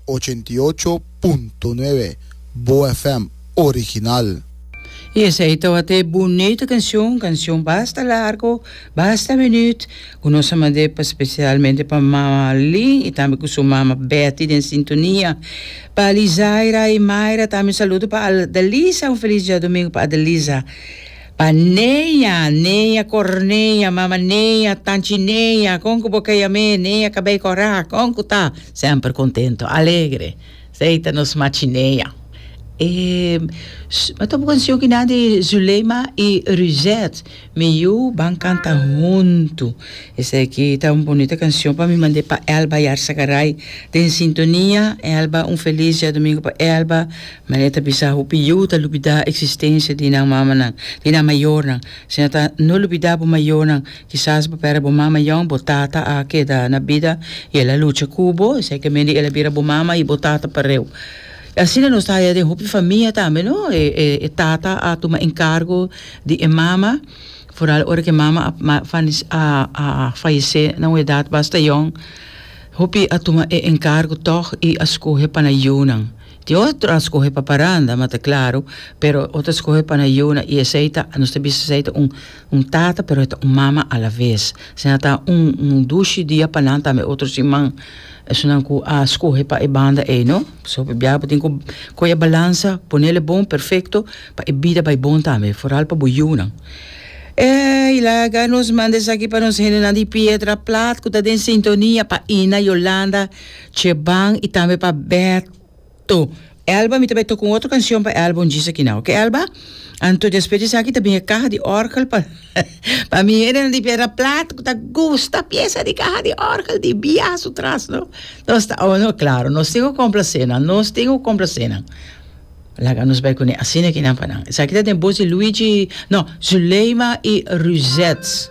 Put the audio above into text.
Ochenta i ocho punto nuebe, Boa FM original. Y esey tawat e bunito cancion, cancion basta largo, basta minuut, cu nos a mande pa specialmente pa mama Lynn y tambe cu su mama Betty den sintonia, pa Alizaira y Myra tambe un saludo pa Adalisa, un feliz diadomingo pa Adalisa. Pa Nea, Nea Cornea, mama Nea, tanchi Nea, con cu bo ka yam'é, Nea cabei corá, con cu ta? Semper contento, alegre, s'ey ta nos machi Nea. E ma ta un cancion ki na di Zuleima y Ruzet, mi yu ban canta huntu. Esaki ta un bonita cancion pa mi mand'é pa Elba Yarsa Garay den sintonia, Elba un feliz diadomingo pa Elba, Maria ta bisa, Hopi yu ta lubidá eksistensia di nan mamanan, di nan mayornan. Si nan ta no lubidá bo mayornan, kisas bo pèrdè bo mama yon. Bo tata a keda na bida i el a lucha ku bo, eseikamende el a bira bo mama i bo tata pareu. I asina nos ta haya den hopi famia tambe, no? E tata a tuma enkargo di e mama, foral ora ku e mama a a fayesé na un edat basta yòn. Hopi a tuma e enkargo tòg i a skohe pa na yunan. Tin otro a scoge pa paranda, ma ta claro, pero otro a scoge pa na yuna y esey ta, nos ta bisa esey ta un, un tata pero e ta un mama a la vez. Asina ta un, un dushi dia pa nan tambe otro siman esunnan cu a scoge pa e banda ey, no? So, biaha bo tin cu coge e balansa, ponele bon, perfecto, pa e bida bay bon tambe, foral pa bo yunan. Ey, laga nos manda esaki pa nos hendenan di Pietra Plat cu ta den sintonia pa Ina, Yolanda, Cheban y tambe pa Berto. Elba mi ta bai toca un otro cancion pa Elba un djis aki na oke Elba? Anto despues di esaki ta bin e caha di orgel pa pa mi hende nan di piedra plat cu ta gusta pieza di caha di orgel di biaha su tras no nos ta oh no claro nos tin cu complace nan nos tin cu complace nan laga nos bai cune asina kinan pa nan esaki ta den boz di Luigi no Zuleima y Ruzet.